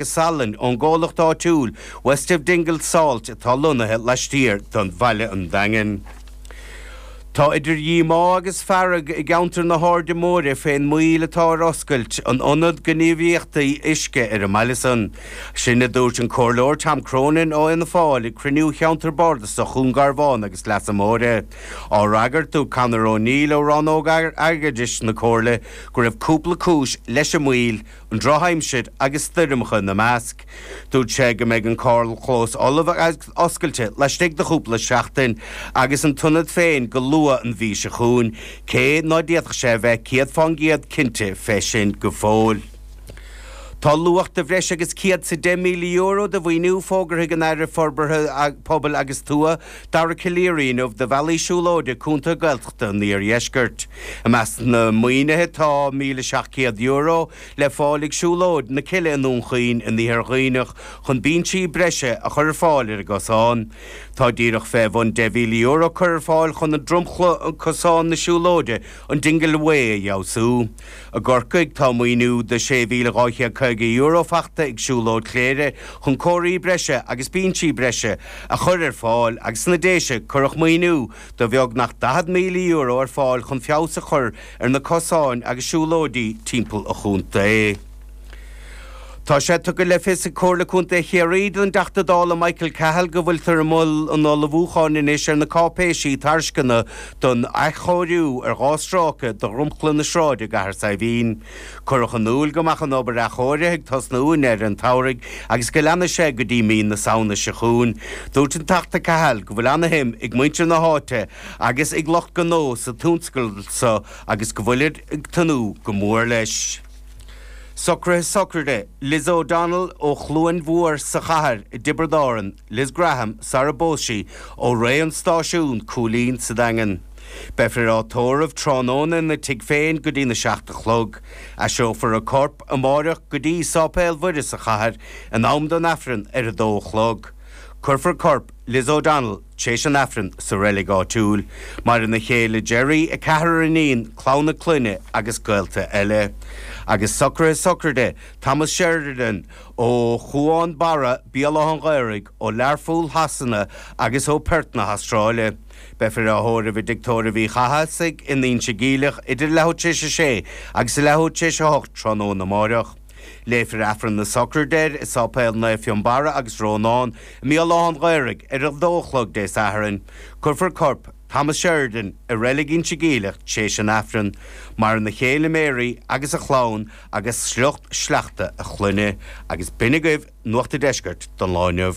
agus salainn ón gcomhlacht áitiúil West of Dingle Salt atá lonnaithe laistiar de bhaile an Daingin. Tá idir dhíomá agus fearg i gceantar na hAirde Móire fén moill atá ar oscailt an ionad gníomhaíochtaí uisce ar an mbaile san. Sin a dúirt an Comhairleoir Tom Cronin ó Fhianna Fáil ag cruinniú Cheantar Bardasach Dhún Garbhán agus Leasa Móire. Á fhreagairt dúirt Conor O'Neill ó rannóg airgeadais na Comhairle go raibh cúpla cúis leis an moill, an drochaimsir agus stoirmeacha ina measc. Dúirt sé go mbeidh an carrchlós ullamh agus oscailte laistigh de chúpla seachtain agus an t-ionad féin go luath an mhí seo chugainn, cé ná féadfadh sé a bheith céad fán gcéad cinnte fé sin go fóill. Tá luach de bhreis agus €110,000 de mhaoiniú fógartha ag an Aire Forbartha Pobail agus Tuath, Dara Calleary inniu do bhealaí siúlóide i gcontaetha Gaeltachta an iardheiscirt. I measc na maoinithe tá €1,700 le fáil ag Siúlóid na Cille i nDún Chaoin in Iarthar Dhuibhneach chun binsí breise a chur ar fáil ar an gcosán. Tá díreach fé bhun €10,000 curtha ar fáil chun an dromchla cosán na siúlóide, an Dingle Way, a fheabhsú. I gCorcaigh, tá maoiniú de €6,250 faighte ag Siúlóid Chléire chun comharthaí breise agus binsí breise a chur ar fáil agus sna Déise cuireadh maoiniú de bheagnach €40,000 ar fáil chun feabhas a chur ar na cosáin agus siúlóidí timpeall an chontae. Tá sé tugtha le fios ag Comhairle Contae Chiarraí don dTeachta Dála Michael Cahill go bhfuiltear i mbun an ullmhúcháin anois ar na cáipéisí tairsceana don athchóiriú ar dhá stráice de dhromchla na sráide i gCathair Saidhbhín. Cuireadh in iúil go mbeadh an obair athchóirithe ag tosnú i ndeireadh an tsamhraidh agus go leanfaidh sé go dtí mí na Samhna seo chugainn. Dúirt an Teachta Cahill go bhfuil ana-shuim ag muintir na háite agus ag lucht gnó sa tionscadal seo agus go bhfuilid ag tnúth go mór leis. Socraithe sochraide, Liz O'Donnell ó Chluain Mhór sa Chathair i dTiobraid Árann, Liz Graham, sarar phós sí, ó Rae an Stáisiúin, Cooleen, sa Daingean. Beifear á tórramh tráthnóna ina tigh féin go dtí a seacht a chlog. Aistreofar a corp amáireach go dtí Sáipéal Mhuire sa Chathair in am don Aifreann ar a dó a chlog. Cuirfear corp Liz O'Donnell Tar éis an Aifrinn sa reilig áitiúil. Maireann a céile Gerry, a ceathrar iníon, clann a clainne agus gaolta eile. Agus socraithe sochraide Thomas Sheridan ó Chuan Barra, Béal Átha an Ghaorthaidh, ó Learpholl Shasana agus ó Perth na hAstráile. Beifear á thórramh i dtigh tórraimh Uí Chathasaigh in Inse Geimhleach idir a leathuair tar éis a sé agus a leathuair tar éis a hocht tráthnóna amáireach. Léifear Aifreann na Sochraide air i Sáipéal Naomh Fionnbarra agus Rónán i mBéal Átha'n Ghaorthaidh ar a dó a chlog Dé Sathairn. Cuirfear corp Thomas Sheridan i Reilig Inse Geimhleach tar éis an Aifrinn. Maireann a chéile Mary agus a chlann agus sliocht sleachta a chlainne. Agus b'shin agaibh Nuacht a' Deiscirt don lá inniu.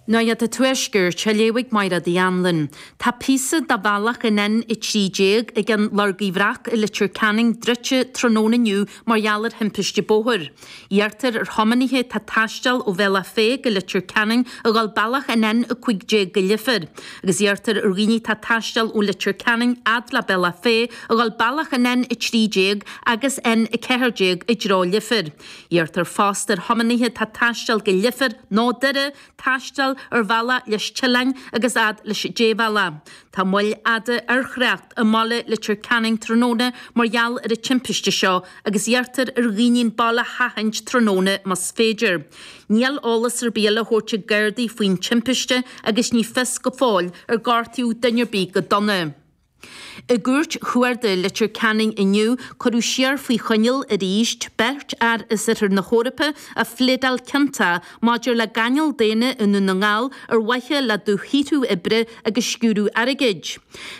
Nuacht a' Tuaiscirt, á léamh ag Máire Uí Annluain. Tá píosa de bhealach an N13 ag an Lorga Bhreac i Leitir Ceanainn druidte tráthnóna inniu mar gheall ar thimpiste bóthair. Iarrtar ar thiománaithe atá ag taisteal ó Bhealach Féich go Leitir Ceanainn a dhul bealach an N15 go Leifear agus iarrtar ar dhaoine atá ag taisteal ó Leitir Ceanainn fhad le Bealach Féich a dhul bealach an N13 agus N14 i dtreo Leifir. Iarrtar fosta ar thiománaithe atá ag taisteal go Leifear nó Doire taisteal ar Bhealach Lis tSileáin agus fhad leis an débhealach. Tá moill fhada ar thrácht i mbaile Leitir Ceanainn tráthnóna mar gheall ar an timpiste seo agus iarrtar ar dhaoine an baile a sheachaint tráthnóna más féidir. Níl eolas ar bith eile á thabhairt ag Gardaí faoin timpiste agus ní fios go fóill ar gortaíodh duine ar bith go dona. I gCúirt Chuarda Leitir Ceanainn inniu, cuireadh siar faoi choinneáil arís beirt fhear as oirthear na hEorpa a phléadáil ciontach maidir le gáinneáil daonna i nDún na nGall ar mhaithe le dúshaothrú oibre agus sciúradh airgid.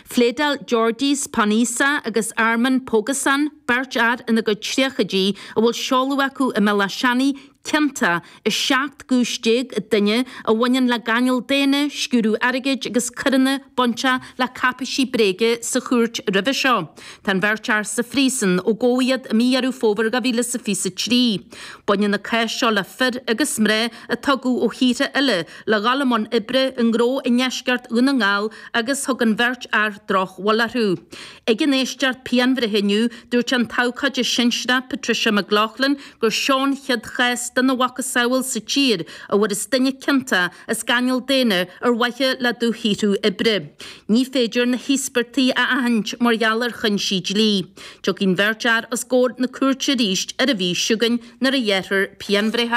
Phléadáil Georgijs Poniza agus Armen Pogosyan, beirt fhear ina gcuid tríochaidí a bhfuil seoladh acu i mBéal Átha Seanaidh, ciontach i 17 gcúis an duine a bhaineann le gáinneáil daonna, sciúradh airgid agus coireanna bainteach le cáipéisí bréige sa chúirt roimhe seo. Tá an bheirt fhear sa phríosún ó gabhadh iad i mí Dheireadh Fómhair 2023. Baineann an cás seo le fir agus mná a tugadh ó thíortha eile le dhul i mbun oibre i ngnó i ndeisceart Dhún na nGall agus thug an bheirt fhear drochbhail orthu. Ag an éisteacht pianbhreithe inniu, dúirt an t-abhcóide sinsearach Patricia McLaughlin, gur seo an chéad chás dena mhacasamhail sa tír a bhfuarthas duine ciontach as gáinneáil daonna ar mhaithe le dúshaothrú oibre. Ní féidir na híospartaigh a aithint mar gheall ar chúinsí dlí. Tiocfaidh an bheirt fhear os gcomhair na cúirte arís ar an mhí seo chugainn nuair a ghearrfar pianbhreith.